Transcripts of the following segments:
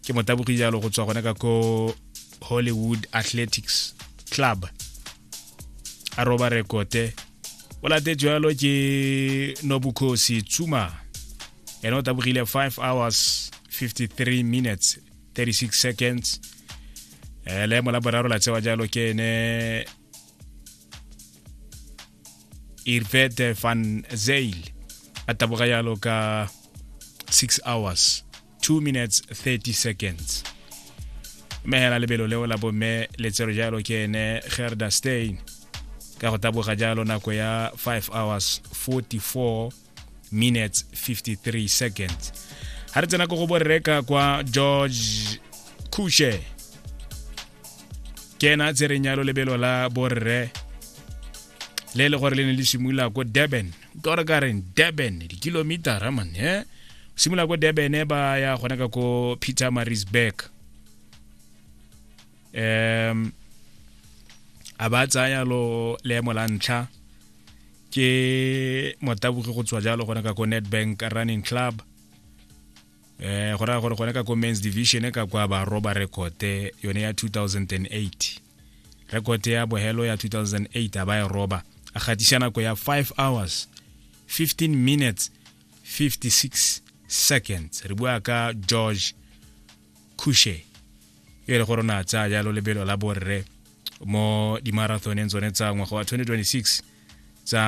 ke motabogi jalo go tswa gone ka ko hollywood athletics club a roba rekote o late jalo ke nobukhosi tsuma ene o tabogile 5 hours 53 minutes 36 seconds eh, leemo la boraro la tsewa jalo ke ene irvete van zail a taboga yalo ka 6 hours 2 minutes 30 seconds mme hela lebelo leo la bomme letsero jalo ke ene gerda stein ka go taboga jalo nako ya 5 hours 44 minutes 53 seconds ga re tsena ko go borreka kwa george kushe ke ena a tsereng yalo lebelo la borre le e le gore le ne le simolola ko durban ka gore ka reng durban dikilomitara man e eh? simolola ko durban e ba ya gone ka ko peter marisburg um a ba tsaya lo leemo la ntlha ke motabogi go tswa jalo gone ka ko netbank running club eh go raya gore gone ka ko men's division ka kwa ba roba rekote yone ya 2008 rekote ya bohelo ya 2008 a ba e roba a gatisa nako ya 5 hours 15 minutes 56 seconds re bua ka george khushe e le gore o ne a tsaya jalo lebelo la borre mo dimarathoneng tsone tsa ngwaga wa 2026 tsa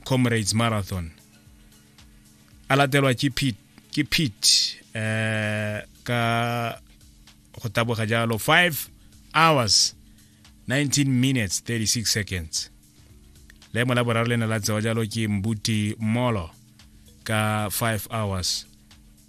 comrades marathon a latelwa ke pete ke pete eh ka go taboga jalo 5 hours 19 minutes 36 seconds leemo la boraro le ne la tsewa jalo ke mbuti molo ka 5 hours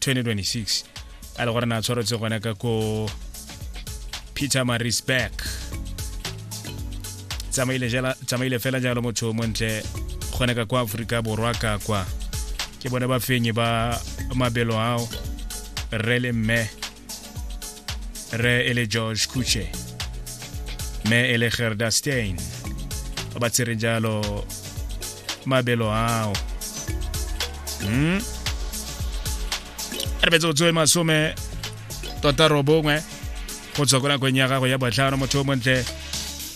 2026 a le gore na tshwaretse gona ka ko peter marisburg tsamaile jela- tsamaile fela jalo motho o montle gone ka kwa aforika borwa ka kwa ke bone ba fenye ba mabelo ao rre le mme re e le george kuche me e le gerda stein ba ba tshwereng jalo mabelo ao mm? re betse go tsoe masome tota robongwe go tswa ko nakong ya gago ya botlhano motho o montle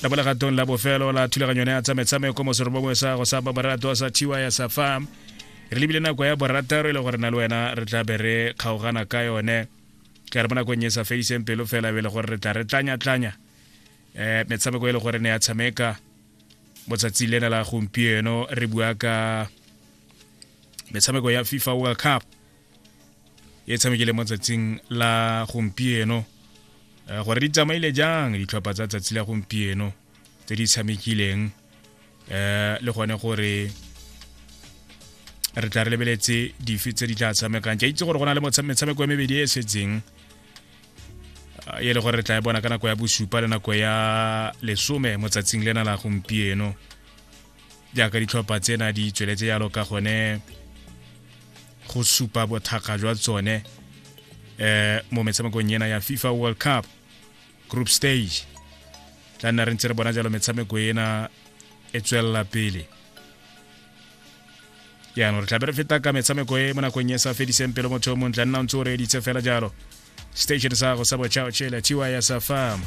la bolegatong la bofelo la thulaganyo ne ya tsa metshameko moserobongwe sa go sa babaratoa sa tiwa ya sa farm re lebile nako ya borataro e le gore na le wena re tla be re kgaogana ka yone ka re mo nakong e sa fediseng pelo fela be e le gore re tla re tlanya-tlanya um eh, metshameko e le gore ne ya tshameka mo tsatsi lena la gompieno re bua ka metshameko ya fifa world cup e tshamekile mo tsatsing la gompieno eh, gore di tsamaile jang ditlhopha tsa tsatsi la gompieno tse di tshamekileng eh le gone gore re tla re lebeletse dife tse di tla tshamekang ke itse gore go na le metshameko ya mebedi e e setseng e le gore re tla e bona ka nako ya bosupa le nako ya lesome motsatsing lena la gompieno jaaka ditlhopha tsena di tsweletse jalo ka gone go supa bothakga jwa tsone um mo metshamekong ena ya fifa world cup group stage tla nna re ntse re bona jalo metshameko ena e tswelela pele jaanong re tlabe re feta ka metshameko e mo nakong e sa fediseng pelo motho o montle nna o ntse o reeditse fela jalo station sa gago sa bochaochela tiwa ya sa farm